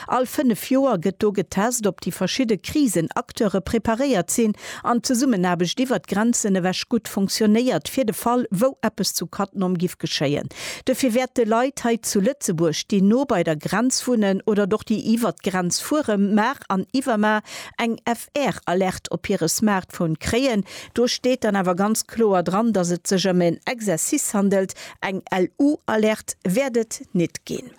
All fënnef Joer gëtt do getest, ob déi verschidde Krisenacteure preparéiert sinn an d'Zesummenaarbecht iwwer d'Grenzen ewech gutt funktionéiert, fir de Fall, wou eppes zu Cattenom giff geschéien. Dofir wäerte Leit hei zu Lëtzebuerg, déi no bei der Grenz wunnen oder och déi iwwer d'Grenz fuere mar an iwwer mar, eng FR-Alerte op hire Smartphone kréien. Do steet dann awer ganz kloer dran, dass et sech ëm en Exercice handelt, eng LU-Alerte wäert et nit ginn.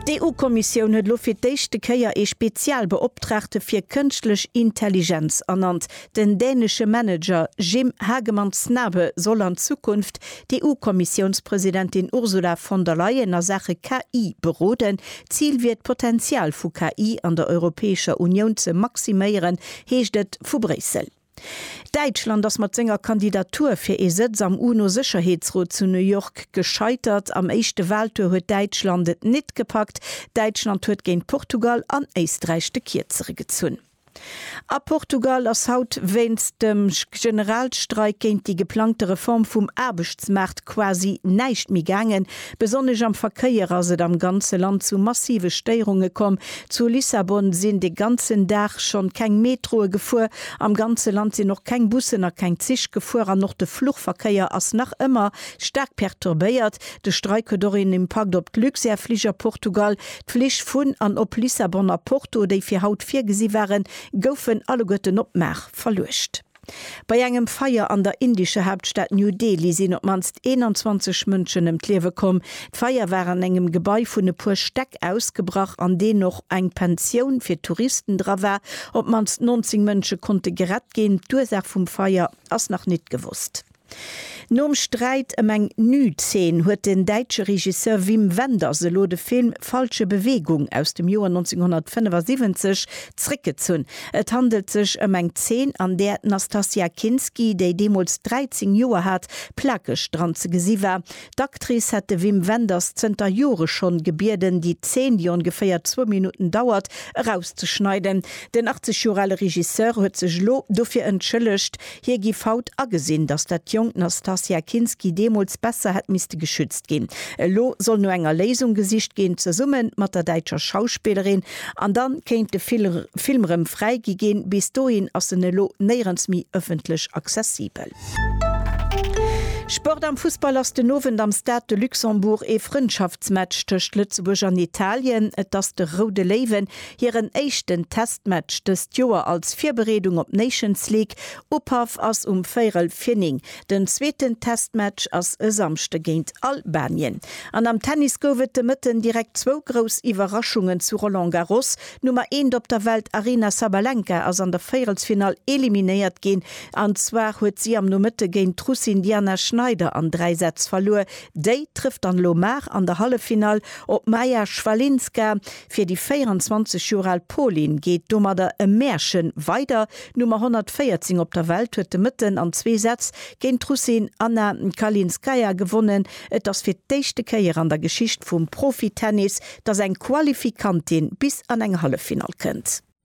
D'EU-Kommissioun huet elo fir d'éischte Kéier ee Spezialbeoptraagte fir Kënschtlech Intelligenz ernannt. Den dänesche Manager Jim Hagemann Snabe soll an Zukunft d'EU-Kommissiounspresidentin Ursula von der Leyen a Saache KI beroden. Zil wier et, d'Potenzial vu KI an der Europäescher Unioun ze maximéieren, heescht et vu Bréissel. Däitschland ass mat senger Kandidatur fir ee Sëtz am UNO-Sécherheetsrot zu New York gescheitert. Am éischte Waltour huet Däitschland et nit gepackt. Däitschland huet géint Portugal an Éisträich de Kierzere gezunn. A Portugal ass haut wéinst dem Generalstreik géint déi geplangte Reform vum Aarbechtsmaart quasi näischt méi gaangen. Besonnesch am Verkéier ass et am ganze Land zu massive Stéierunge komm. Zu Lissabon sinn de ganzen Dag schonn keng Metroe gefuer. Am ganze Land sinn och keng Bussen a keng Zich gefuer an och de Fluchverkéier ass nach ëmmer staark perturbéiert. De Streik huet och een Impakt op d'Luxair-Fliger Portugal. D'Flich vun an op Lissabon a Porto, déi fir haut virgesi waren, goufen alleguerten op Maach verluecht. Bei engem Feier an der indescher Haaptstad New Delhi sinn op d'mannst 21 Mënschen ëm d'Liewe komm. D'Feier war an engem Gebai vun e puer Stäck ausgebrach, an deen och eng Pensioun fir Touristen dra war. Op d'mannst 19 Mënsche konnte gerett ginn. D'Ursaach vum Feier ass nach nit gewosst. Nom Sträit ëm eng Nüd-Zeen huet den däitsche Regisseur Wim Wenders elo de Film Falsche Bewegung aus dem Joer 1975 zréckgezunn. Et handelt sech ëm eng Zeen, an där d'Nastassja Kinski, déi deemools 13 Joer hat, plakeg dran ze gesi war, D'Actrice hätt de Wim Wenders zënter Jore schonn gebieden, déi Zeen, déi ongeféier zwou Minutten dauert, erauszeschneiden. Den 80 Joer ale Regisseur huet sech elo dofir entschëllegt. Hie giff haut agesinn, datt dat jonkt Nastassja Kinski deemools besser hätt misste geschützt ginn. Elo soll no enger Léisung gesicht ginn, zesumme mat der däitscher Schauspillerin. An da kéint de Film rëm fräigi ginn. Bis dohin ass en elo néierens méi ëffentlech accessibel. Sport am Fussball ass den Owend am Stade de Luxembourg ee Frëndschaftsmatch tëscht Lëtzebuerg an Italien. Et ass de Roude Léiwen hiren éischten Testmatch dëst Joer als Virbereedung op d'Nations League. Upaff ass um véierel vir 9. Den zweeten Testmatch ass e Samschde géint Albanien. An am Tennis gouf et de Mëtten direkt zwou grouss Iwwerraschungen zu Roland Garros. D'Nummer eent op der Welt Aryna Sabalenka ass an der Véierelsfinall eliminéiert ginn. An zwar huet si am Nomëtte géint d'Russin Diana Schneider an 3 Sätz verluer. Déi trëfft dann elo mar an der Halleffinall op d'Maja Schwalinska. Fir déi 24 Joer al Polin geet domadder e Märche weider. D'Nummer 114 op der Welt huet de Mëtten an zwee Sätz géint d'Russin Anna Kalinskaya gewonnen. Et ass fir d'éischte Kéier an der Geschicht vum Profitennis, dass eng Qualifikantin bis an eng Halleffinall kënnt.